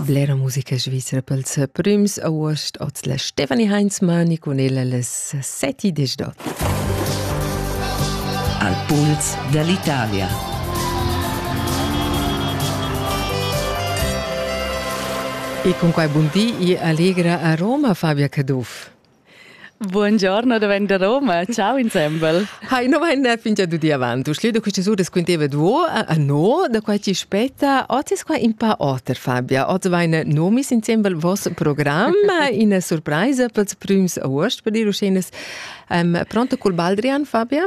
Blera musica svizra pels prüms august oz la Stefanie Heinzmann e con ella les seti desdot. Al puls dell'Italia. E con quai buondì e allegra a Roma Fabia Caduff. Buongiorno, davent da Roma. Ciao insembel. Hai, no vain fingia dudi avant. Du schliedo queste sure squinteva duo a no da quai ti spetta. Oz es qua in pa oter, Fabia. Oz vain nomis insembel vos program in surpraisa pels prüms august per dir uschenas. Um, pronto col Baldrian, Fabia?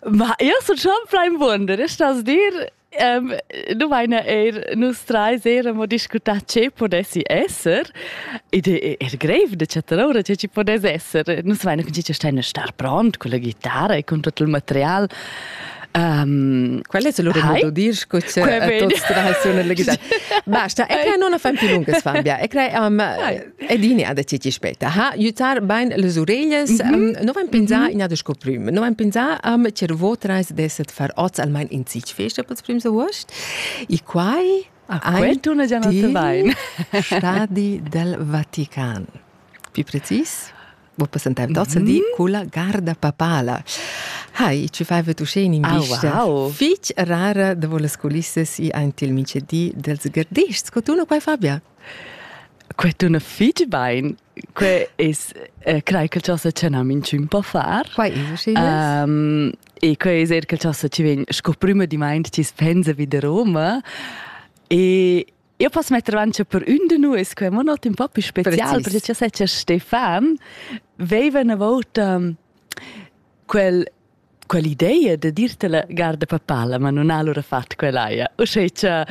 Ma io sun schon plain buonder, stas dir Um, nu vaina eir nus trais eir amo discutà che podessi esser. Id è er greiv da chattar ora che ci podess esser. Nus vaina cun cica staina star pront con la chitarra e con tot il material. Um, Quel è solo il modo di disco che tot tras una legità. Basta, e crea non a fam più lungas Fabia. E crea um, Ed ini ha decidi speta, ha aiutar bain les ureglias, mm -hmm. non vain pensà mm -hmm. ina desco prüm, non vain pensà um, che votrais desset far oz almain in sich feste pels prüms august. E quai a quell'una giornata bain. Stadi del Vatican. Più precis, vos presentaive dozen mm -hmm. di culla garda papala. Hai, ci fai vetu sceni in vista. Ah, wow. Fich rara de voles coulisses i ein til mince di dels gardists. Co tu no quai Fabia? Quei tuna fetg bein. Quei es, eh, crai che cha sa tschena minchün po far. Quai es aschi nice. Um, e quei es eir che cha sa ci vegn sco prüma di maint chi spensa vi da Roma. E io posso mettere avanti per un di noi, che è un nota un po' più speciale, perché io sai che Stefan aveva una volta um, quel quell'ideia da dir tala garda papala, ma non ha allora fatto quell'aia. O sei cha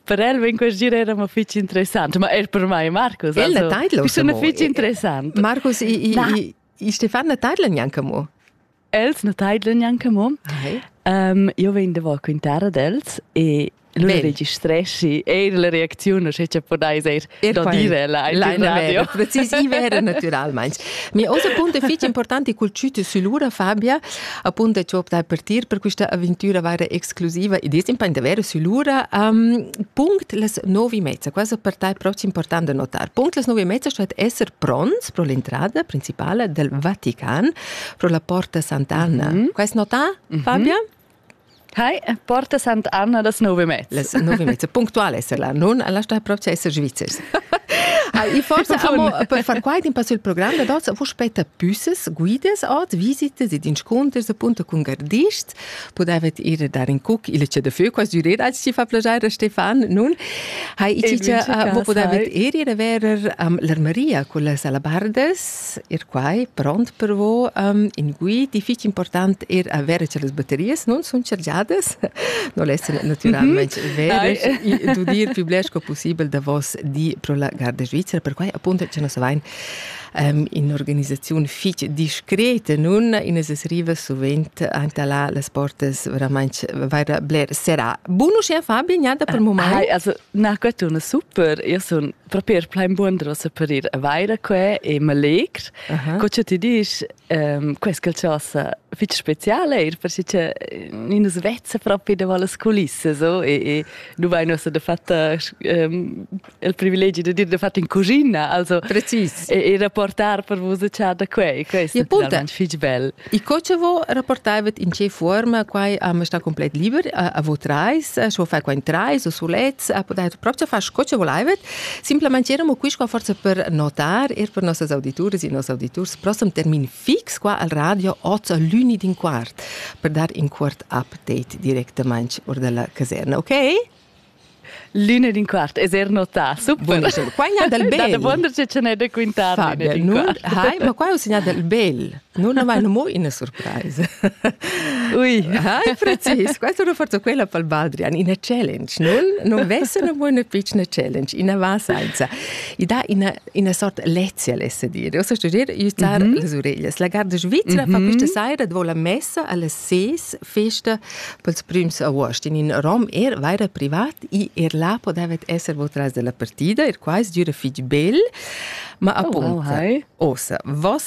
per el vem quel gir era mo fitch interessant, ma er per mai Marcus. Ella also, taidlo. Bisogna fitch interessant. Marcus, i, i, i, Stefan na taidla neanche mo. Els na taidlan neanche mo. Okay. Um, io vegn da quintare d'els e Lui registreschi eir la reacziun, sche cha podais eir da dire là in radio. Precisiva era naturalmain. Mi osa punto fitg importanti cul ciuti sulura, Fabia, appunto che optai partir per questa avventura vera exclusiva e dis impegn davvero sulura. Um, punct las novi mezza, quasi per tai proxim importante notar. Punct las novi mezza sto essere pronts pro l'entrada principale del Vatican, pro la Porta Sant'Anna. Mm -hmm. Quest notà, Fabia? Mm -hmm. Hi, porta Sant'Anna das nove mezz. Les nove mezz punctuales la nun alla sta propria esser svizzers. Ah, e forse amo, per far quaid in passo il programma da dots, vos spetta püsses, guides, ot, visites ed insconters appunto con gardists. Podavet ir dar in cuc il ce de feu, quas düret als ci fa piacere Stefan, nun. Hai, e cicia, vo podavet ir ir a verer um, l'armaria con las alabardes, ir quai pront per vo um, in guid e fich important er avere che las batterias non sun chargiadas non lesser naturalmente mhm. vere e d'udir più blesco possibile da vos di pro la Garda Svizzera per quai appunto che nos vain um, in organizzazione fich discreta nun in es riva sovent ante la las portas veramente vaira bler serà buono sia Fabio niada per ah, moment hai also na quattro una super io sono propi er plain buon da separir vaira qua e ma legr. Uh -huh. Co che ti dici, ehm, questa chasa fitg speciale er perché che eh, nus vezza propi davanti alle culisse so, e, e nu vai nos da fatta ehm, il privilegio di dire da fatta in cucina, also Precis. E, e rapportar per vos da qua, questo è finalmente fitg bel. E co ce vo rapportavet in che forma quai am sta complet liber a vo trais, scho fa quain trais o sulets, a podet proprio far co ce volaivet. Simplemente eramo qui qua forse per notar er per nossas audituras e nos auditurs prossem termin fix qua al radio oz l'uni din quart per dar in quart update directamente or della caserna, okay? L'ina d'un quart, es er notà, super. Qua il del bel. Da wonder che ce n'è da quintar l'ina d'un quart. Hai, ma qua è un segnal del bel. Non aveva mo una surprise. Ui. Hai, precis. Qua sono forse quella per Baldrian, una challenge, non? Non vesse una buona piccina challenge, una va senza. I dà una, una sorta lezia l'esse dire. O so dire, juttar mm -hmm. les oreilles. La garda svizra mm -hmm. fa questa sera, davo la messa, alle 6, festa Pels prims avuost in ün rom er vaira privat i er là podavet esser votras della partida, er quais düra fich bel. Ma appunto, ossa, voss